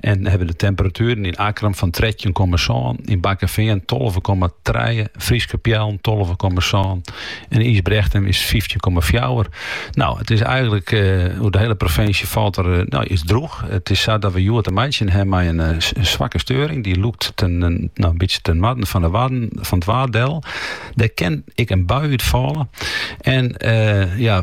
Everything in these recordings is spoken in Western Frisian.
en hawwe de temperatueren yn Akkrum fan trettjin komma sân, yn Bakkeveen tolve komma trije, Fryske Peallen tolve komma sân en Ysbrechtum is fyftjin komma fjouwer. No, it is eigenlik eh, oer de hele provinsje falt er eh, no, is droeg. It is sa dat we hjoed te meitsjen ha mei in eh, zwakke steuring. Dy leit, eh, no, in bytsje ten noarden fan de waden, fan it Waad. Dêr kin ek in bui út falle. En eh, ja,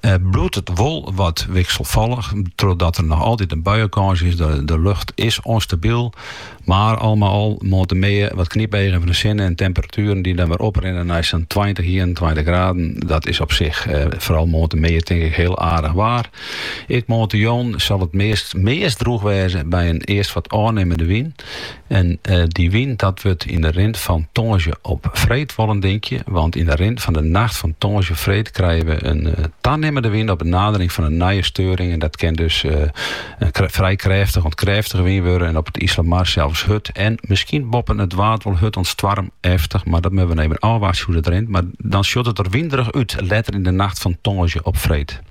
bliuwt it wol wat wikselfallich, trochdat der noch altyd in buienkâns is. De lucht is ûnstabyl, mar al mei al moarntemiddei wat knypeagen fan de sinne en temperatueren dy't dan wer oprinne nei sa'n tweintich, ienentweintich graden. Dat is op sich, foaral moarntemiddei, tink ik hiel aardich waar. Ek moarntejûn sil it meast droech wêze by in earst wat ôfnimmende wyn. En eh, dy wyn dat wurdt yn de rin fan tongersdei op freed wol in dinkje, want yn de rin fan de nacht fan tongersdei op freed krije we in eh, tanimmende wyn op de nadering fan in nije steuring. En dat kin dus eh, in krê- frij krêftich oant krêftige wyn wurde en op it Iselmar zelfs hurd. En misschien boppen it waad wol hurd oant stoarmeftich, maar dat moatte we even ôfwachtsje hoe dat rint. Maar dan sjocht it der winderich út letter yn de nacht fan tongersdei op freed.